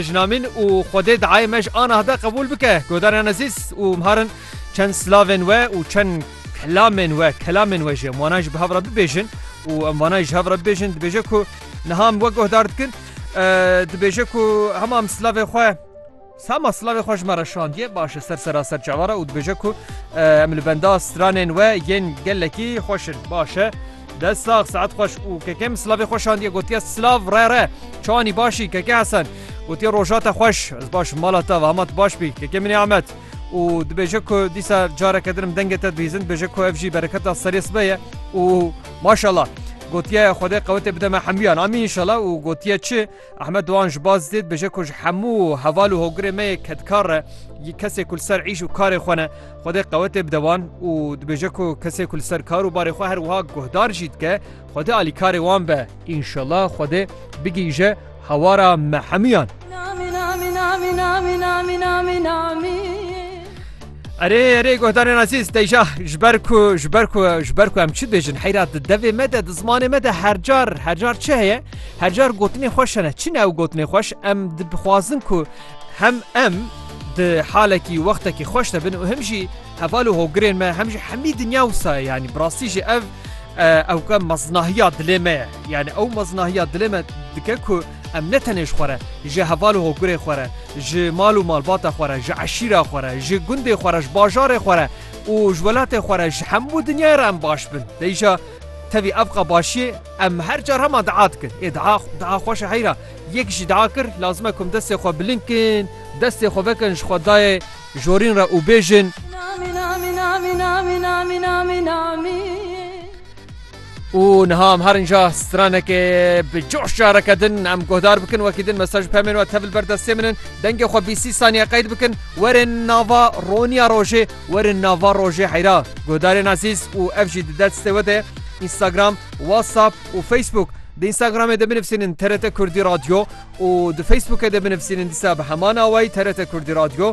Jinamîn û Xwedê diayê me ji anah de qebûl bike. Godaran ezîz û mharin çend silavên we û çend kelamên we kelamên we jî em wanan ji bi hev re bibêjin û em vanan ji hev re bibêjin dibêje ku niha em we guhdar dikin dibêje ku hema em silavê xwe Sama silavê xwe ji me re şandiye baş e ser sera ser çavara û dibêje ku em li benda stranên we yên gelekî xweş in baş e. Dest sax saet xweş û keke min silavê xwe şandiye gotiye silav re re çanî başî keke Hesen gotiye roja te xweş ez baş mala te ve hema tu baş bî keke min ê Ahmet û dibêje ku dîsa careke din dengê te dibîzin dibêje ku ev jî bereketa serê sibe ye û maşallah gotiye xwedê qewetê bide me hemûyan amîn înşallah û gotiye çi Ehmed Doan ji baz dê dibêje ku ji hemû heval û hogirê me yê kedkar e, yî kesê ku li ser îş û karê xwe ne, Xwedê qewetê bide wan û dibêje ku kesê ku li ser kar û barê xwe her wiha guhdar jî dike, Xwedê alîkarê wan be. Înşellah Xwedê bigihîje hawara me hemûyan. Erê erê guhdarên azîz deja ji ber ku ji ber ku ji ber ku em çi bêjin heyra di devê me de di zimanê me de her car her car çi heye her car gotinê xweş hene çi ne ew gotinê xweş em dibixwazin ku hem em di halekî wextekî xweş de bin û him jî heval û hogirên me hem jî hemî dinya wisa yanî bi rastî jî ev ew ke meznahiya dilê me ye yani ew meznahiya dilê me dike ku Em ne tenê ji xwe re, ji heval û hogurê xwe re, ji mal û malbata xwe re, ji eşîra xwe re, ji gundê xwe re, ji bajarê xwe re û ji welatê xwe re, ji hemû dinyayê re em baş bin. Lê îşa tevî ev qe başiyê em her car hema dia dikin. Ê dia, dia xweş e heyra. Yek jî dia kir, lazim e ku em destê xwe bilind kin, destê xwe vekin ji xwedayê jorîn re û bêjin, û niha em herin ja stranekê bi coş careke din em guhdar bikin wekî din mesaj pemên we tevil ber destê min in dengê xwe bîsî saniye qeyd bikin werên nava roniya rojê werên nava rojê heyra guhdarên ezîz û ev jî di destê we de Instagram, WhatsApp û Facebook di Instagramê de binivîsînin TRT Kurdî Radyo û di Facebookê de binivîsînin dîsa bi heman awayî TRT Kurdî Radyo